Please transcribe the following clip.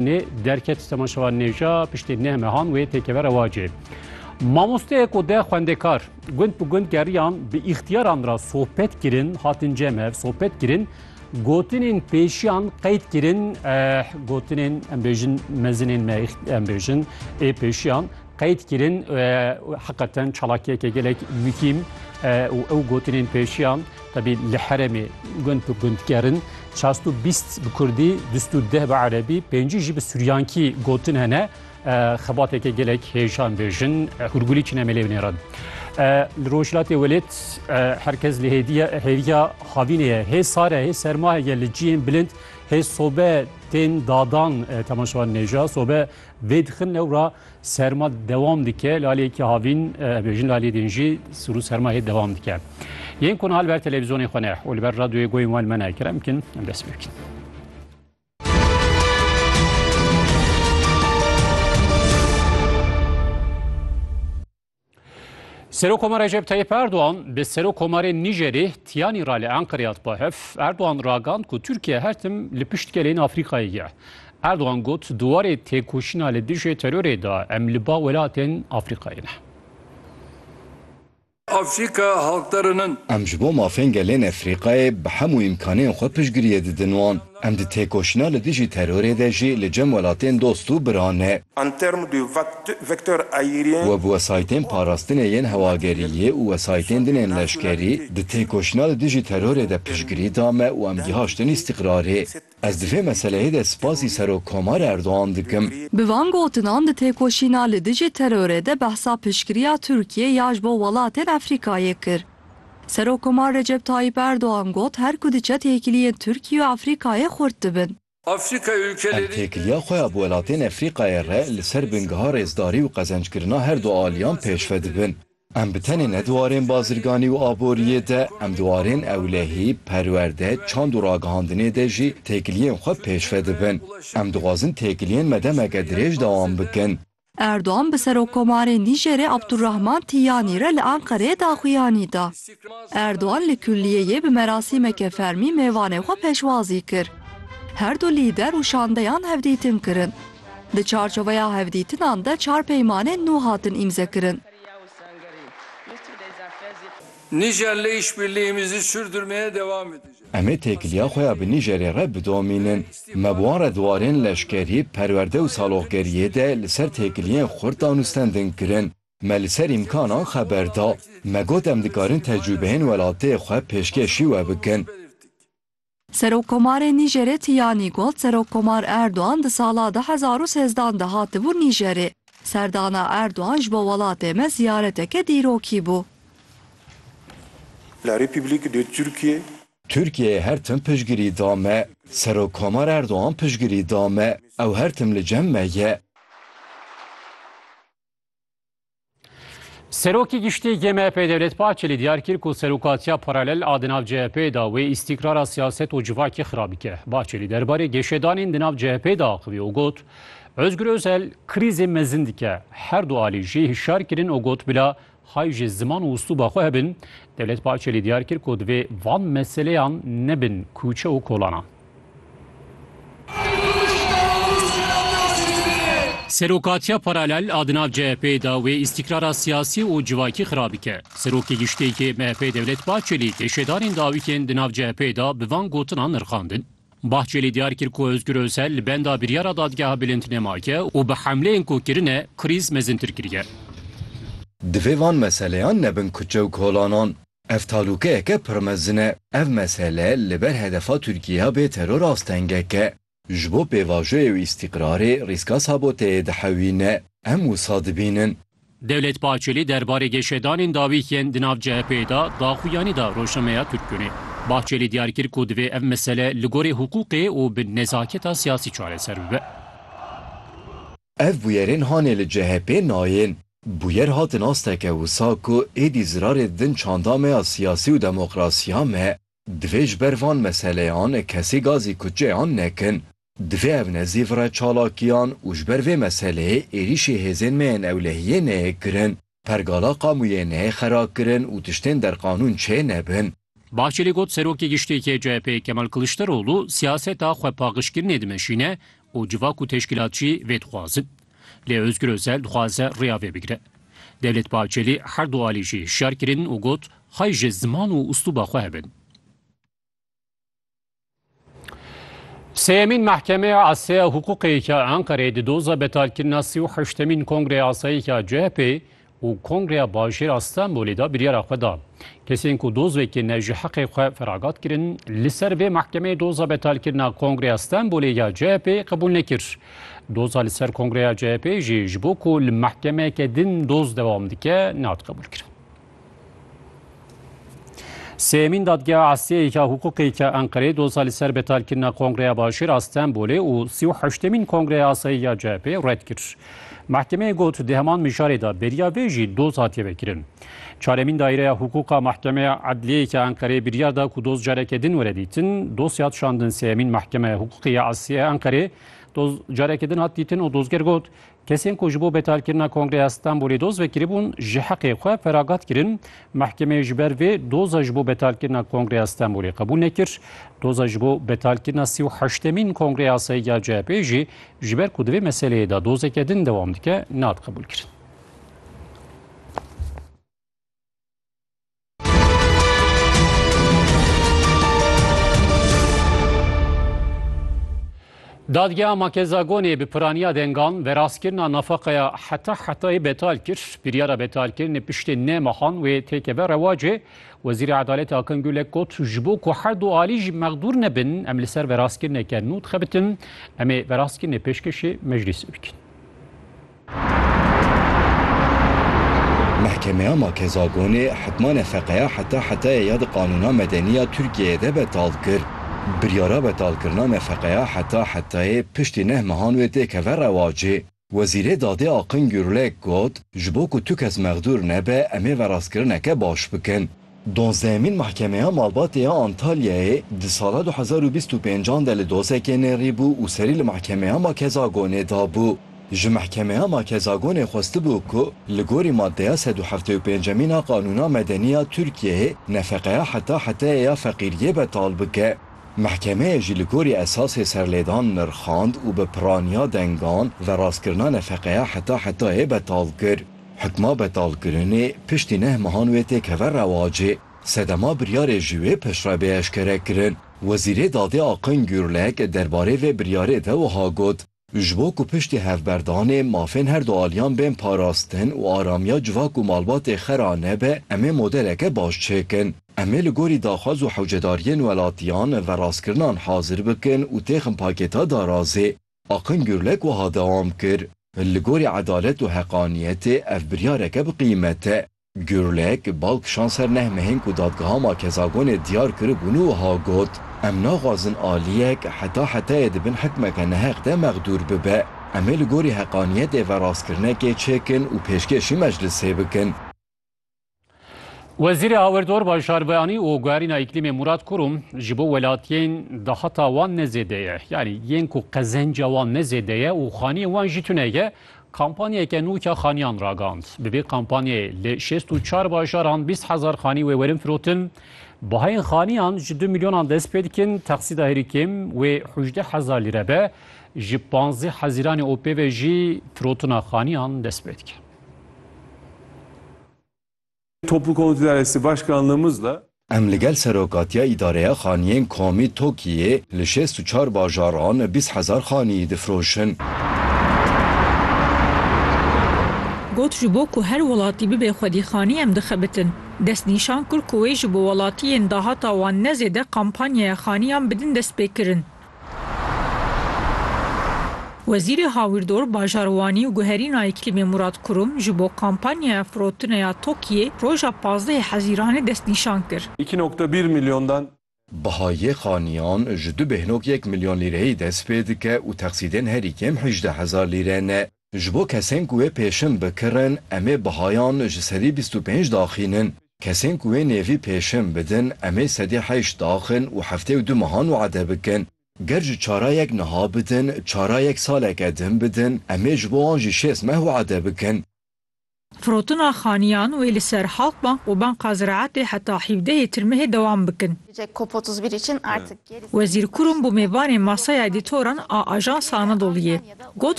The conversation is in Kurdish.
Nê derket Sema Şevan Nêja piştê neh mehan wê têkeve rewacê. Mamosteyek û de xwendekar gund bi gund geriyan bi îxtiyaran ra sohbet kirin, hatin cemev sohbet kirin, gotinên pêşiyan qeyd kirin, eh, gotinên em bêjin mezinên me em bêjin ê pêşiyan Qeyd kirin heqeten çalakiyeke gelek mukîm û ew gotinên pêşiyan tebî li heremê gund bi gund gerin. Çast û bîst bi Kurdî, dust û deh bi Erebî, pêncî jî bi Suryankî gotin hene. Xebateke gelek hêjan bêjin hûrgulî çine melê binê re. Li Rojhilatê welêt herkes li hêviya havînê ye. Hê sar e, hê serma heye li ciyên bilind, hê sobe tên dadan temaşewan nêja. Sobe Vê di xin ewra serma dewam dike, lalê yekî havîn ev ê jin lalê din jî sirû serma hê dewam dike. Yên ku niha li ber televîzyonê xwe ne û li ber radyoyê goyên wan me ne kerem bikin em dest pê bikin. Serokomar Recep Tayyip Erdoğan bi Serokomarê Nijerê Tiyanî ra li Enqerê hat ba hev. Erdoğan ragand ku Tirkiye her tim li pişt gelên Afrîkayê ye. Erdoğan got di warê têkoşîna li dijê terorê de em li ba welatên Afrîkayê ne. Afrika halkderen in. Em ji bo mafên gelên Efrîkayê bi hemû îmkanên xwe piştgiriyê didin wan. Em di têkoşîna li dijî terorê de jî li cem welatên dost û bira ne. En termes de vecteurs aériens, Bi wesaytên parastinê yên hewageriyê û wesaytên din ên leşkerî di têkoşîna li dijî terorê de piştgirî da me û em gihaştin îstîqrarê. Ez di vê meseleyê de spasî Serokkomar Erdogan dikim. Bi van gotinan di têkoşîna li dijî terorê de behsa piştgiriya Tirkiyê ya ji bo welatên Efrîkayê kir. Serokkomar Recep Tayyîp Erdogan got, Her ku diçe têkiliyên Tirkiye û Efrîkayê xurt dibin. Em têkiliya xwe ya bi welatên Efrîkayê re li ser bingeha rêzdarî û qezencikirina her du aliyan pêşve dibin. Em bi tenê ne di warên bazirganî û aboriyê de, em di warên ewlehî, perwerde, çand û ragihandinê de jî têkiliyên xwe pêşve dibin. Em dixwazin têkiliyên me demeke dirêj dewam bikin. Erdogan bi Serokkomarê Nîjerê Abdulrahman Tiyanî re li Enqereyê daxuyanî da. Erdogan li kulliyeyê bi merasîmeke fermî mêvanê xwe pêşwazî kir. Her du lîder û şandeyan hevdîtin kirin. Di çarçoveya hevdîtinan de çar peymanên nû hatin îmzekirin. Nîjer li îşbirlîhê Mîzî Sûr Durmeyê dewam dike. Em ê têkiliya xwe ya bi Nîjerê re bidomînin. Me bi wan re di warên leşkerî, perwerde û saloqgeriyê de li ser têkiliyên xurt danûstendin kirin. Me li ser îmkanan xeber da. Me got em dikarin tecrûbeyên welatê xwe pêşkêşî we bikin. Serokkomarê Nîjerê Tiyanî got Serokkomar Erdogan di sala du hezar û sêzdan de hatibû Nîjerê. Serdana Erdogan ji bo welatê me ziyareteke dîrokî bû. La République de Türkiye. Tirkiyeyê her tim piştgirî da me. Serokkomar Erdogan piştgirî da me. Ew her tim li cem me ye. Serokê Giştî yê MHP'ê Devlet Bahçelî diyar kir ku serokatiya paralel a di nav CHP'ê de wê îstîkrara siyaset û civakê xirab bike. Bahçelî derbarê geşedanên di nav CHP'ê de axivî û got, Ozgur Ozel krîzê mezin dike. Her du alî jî hişyar kirin û got bila Hay ji ziman û uslûba xwe hebin, Dewlet Bahçelî diyar kir ku divê van meseleyan nebin kûçe û kolanan. Serokatiya paralel a di nav CHP'ê de wê îstîkrara siyasî û civakî xira bike. Serokê Giştî yê MHP'ê Dewlet Bahçelî tê şêdarên dawîkên di nav CHP'ê de bi van gotinan nirxandin. Bahçelî diyar kir ku Ozgur Osel li benda biryara dadgeha bilind nemaye û bi hemleyên ku kirine krîz mezintir kiriye. Divê van meseleyan nebin kuçe û kolanan. Ev talûkeyeke pir mezin e. Ev mesele li ber hedefa Tirkiyeya bê teror astengek e. Ji bo pêvajoyê û îstîqrarê rîska saboteyê dihewîne. Em wisa dibînin. Dewlet Bahçeli derbarê geşedanên dawî yên di nav CHP'ê de daxuyanî da rojnameya Türkgünê. Bahçeli diyar kir ku divê ev mesele li gorî hiqûqê û bi nezaketa siyasî çareser bibe. Ev bûyerên hanê li CHP'ê nayên. Bûyer hatin asteke wisa ku êdî zirarê din çanda me ya siyasî û demokrasiya me. Divê ji ber van meseleyan kesê gazê kutçeyan nekin. Divê ev nezîv re çalakiyan û ji ber vê meseleyê êrîşê hêzên me yên ewlehiyê neyê kirin. Pergala qamûyê neyê xera kirin û tiştên derqanûn çê nebin. Bahçelî got Serokê Giştî yê CHP'ê Kemal Kiliçdaroglu siyaseta xwepaqijkirinê dimeşîne û civak û teşkîlatçî vê dixwazin. Lê Ozgur Ozel dixwaze riya vê bigire. Devlet Bahçeli her du alî jî hişyar kirin û got, Xweh ji ziman û uslûba xwe hebin. Sêyemîn Mehkemeya Aseya Hiqûqê ya Enqereyê di doza betalkirina sî û heştemîn Kongreya Asayî ya CHP'ê û Kongreya Bajêr a Stenbolê de biryara xwe da, kesên ku doz wekî ne ji heqê xwe feragat kirin, li ser vê mehkemeyê doza betalkirina Kongreya Stenbolê ya CHP'ê qebûl nekir. Doza li ser Kongreya CHP'ê jî ji bo ku li mehkemeyeke din doz dewam dike, nehatiqebûlkirin. Sêyemîn dadgeha Asyayê ya Hukûqê ya Enqereyê doza li ser betalkirina Kongreya Başêr a Stenbolê û sî û heştemîn Kongreya Asayî ya CHP'ê red kir. Mehkemeyê got di heman mijarê de beriya vê jî doz hatiye vekirin. Çaremîn Daîreya Hukûqa Mehkemeya Edliyeyê ya Enqereyê biryar da ku doz careke din were dîtin. Dosya hat şandin Sêyemîn Mehkemeya Hukûqê ya Asyayê Enqereyê doz careke din hat dîtin û dozger got Kesên ku ji bo betalkirina Kongreya Stenbolê doz vekiribûn ji heqê xwe feragat kirin. Mehkemeyê ji ber vê doza ji bo betalkirina Kongreya Stenbolê qebûl nekir. Doza ji bo betalkirina sî û heştemîn Kongreya Asayî ya CHP'ê jî ji ber ku di vê meseleyê de dozeke din dewam dike, nehat qebûlkirin. Dadgeha Makezagonê bi piraniya dengan verastkirina nafaqeya heta hetayê betal kir. Biryara betalkirinê piştê neh mehan wê têkeve rewacê. Wezîrê Edaletê Akin Gulek got, Ji bo ku her du alî jî mexdûr nebin, em li ser verastkirineke nû dixebitin, em ê verastkirinê pêşkêşî meclîsê bikin. Mehkemeya Makezagonê hikma nefeqeya heta hetayê ya di qanûna medenî ya Tirkiyeyê de betal kir. Biryara betalkirina nefeqeya heta hetayê piştî neh mehan wê tê keve rewacê. Wezîrê Dadê Akın Gürlek got, Ji bo ku tu kes mexdûr nebe em ê verastkirineke baş bikin. Donzdehemîn Mahkemeya Malbatê ya Antalyayê di sala du hezar û bîst û pênc an de li dosekê nêrîbû û serî li Mahkemeya Makezagonê dabû. Ji Mahkemeya Makezagonê xwestibû ku li gorî madeya sed û heftê û pêncemîn a Qanûna Medenî ya Tirkiyeyê nefeqeya heta heteyê ya feqîriyê betal bike. Mahkemeyê jî li gorî esasê serlêdan nirxand û bi piraniya dengan verastkirina nefeqeya heta hetayê betal kir. Hukma betalkirinê piştî neh mehan wê tê keve rewacê. Sedema biryarê jî wê pişt re bê eşkerekirin. Wezîrê Dadê Akın Gürlek derbarê vê biryarê de wiha got, Ji bo ku piştî hevberdanê mafên her du aliyan bên parastin û aramiya civak û malbatê xera nebe, em ê modeleke baş çêkin. Em ê li gorî daxwaz û hewcedariyên welatiyan ve rastkirinan hazir bikin û têxin pakêta darazê. Akın Gürlek wiha dewam kir, Li gorî edalet û heqaniyetê ev biryareke bi qîmet e. Gürlek, bal kişand ser neh mehên ku Dadgeha Makezagonê diyar kiribûn û wiha got, Em naxwazin aliyek heta hetayê di bin hikmeke neheq de mexdûr bibe. Em ê li gorî heqaniyetê ve rastkirinekê çêkin û pêşkêşî meclisê bikin. Wezîrê Hawirdor Bajarbeyanî û Guherîna Îklîmê Murad Kurum ji bo welatiyên dahata wan ne zêde ye. Yanî yên ku qezenca wan ne zêde ye û xaniyên wan jî tune ye, kampanyeke nû ya xaniyan ragihand. Bi vê kampanyayê li şêst û çar bajaran bîst hezar xanî wê werin firotin. Bahayên xaniyan ji du milyonan dest pê dikin, texsîda herî kêm wê hûjdeh hezar lîre be. Ji panzdeh hezîranê OP'ê ve jî firotina xaniyan dest pê dike. Toplu Konut İdaresi Başkanlığımızla. Em li gel Serokatiya Îdareya Xaniyên Komî TOKİ'yê li şêst û çar bajaran bîst hezar xaniyî difroşin. Got ji bo ku her welatî bibe xwedîxanî em dixebitin. Destnîşan kir ku wê ji bo welatiyên dahata wan ne zêde kampanyaya xaniyan bidin destpêkirin. Wezîrê Hawirdor, Bajarwanî û Guherîna Îklîmê Murad Kurum ji bo kampanyaya firotinê ya TOKİ'yê roja pazdehê Hezîranê destnîşan kir. Îki nokta bir milyondan. Biha yê xaniyan ji du bêhnok yek milyon lîreyî dest pê dike û texsîdên herî kêm hejdeh hezar lîre ne. Ji bo kesên ku wê pêşin bikirin, em ê bihayan ji sedî bîst û pênc daxînin. Kesên ku wê nêvî pêşin bidin, em ê sedî heşt daxin û heftê û du mehan wade bikin. Ger ji çarayek niha bidin, çarayek saleke din bidin, em ê ji bo wan jî şêst meh wade bikin. Firotina xaniyan wê li ser Halkbank û Banka Ziraetê heta hîvdehê Tirmehê dewam bikin. Wezîr Kurum bi mêvanê Masaya Edîtoran a Ajansa Anadoluyê got,